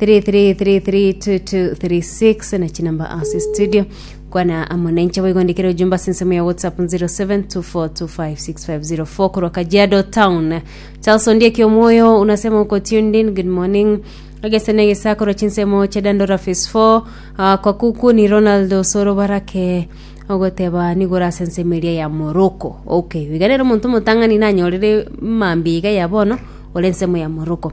33332236 na chinamba ase studio kwana amo nainche boigondekere ojumba ase ensemo ya whatsapp 0724256504 korwa kajiado town charles ondieki omwoyo unasema uko tuned in good morning agesena egesa korwa chinsemo chia dandora phase 4 uh, kwakuku ni ronald osoro barake ogoteba nigora ase ensemo eria ya moroko okay biganere omonto omotang'ani nanyorire mambia iga ya bono ore ensemo ya moroko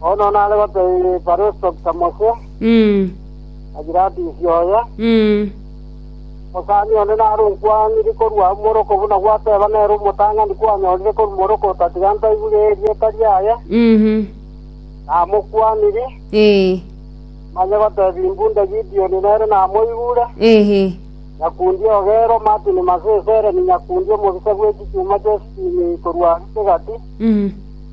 Bono nare gotebia Festo ng'a Mose, Mm. na Pilatus oye, Mm. omosani onde nare onkwanire korwa amo moroko buna gwateba nere omotang'ani kwanyorire korwa moroko otatiga ntaigure erieta riaye, Mhm. namokwanire, Eh. manye gotebia imbunda Gideoni nere namoigure, Ehe. nyakundi ogero Martin Masesere ni nyakundi omobisa bw'echichuma chi'esitini korwa Aritegati, Mhm.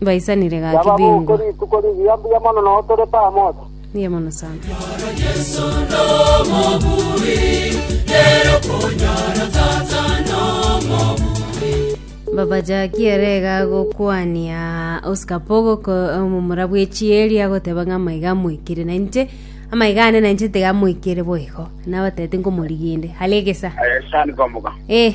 Baisanire gaki Yaba bingwa. boku rituko rigiya mbuya mono nao tore pamoja. Mbuya mono sana. Baba Jackie ere iga agokwania Oscar Pogo ko omomura bw'echieri agoteba ng'a amaiga amoikire na inche amaiga ane na inche tiga amoikire boigo nabatebete nkomoriginde hare egesa Eh, sani komoka. eh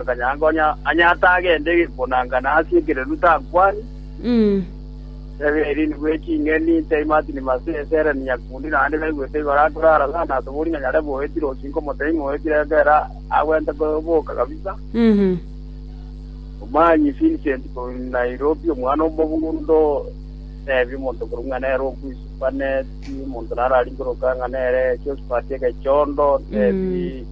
Akanyanka onye aye atagende gonangana ase ekereru takwani, tebe erindi bwe ching'eni, ntaimati ni mase ense ere ni nyakundi, naende naigwete igoro akore aroro na asubori ng'a nyare boetire osinka omoteimi oetire ekero agwente koboka kabisa. Omanyi Vincent korwa Nairobi, omwana omogundo, tebia omonto korwa ng'a nere okwi Supanet, omonto naro arinkoroka ng'a nere Josphat Egechondo, tebia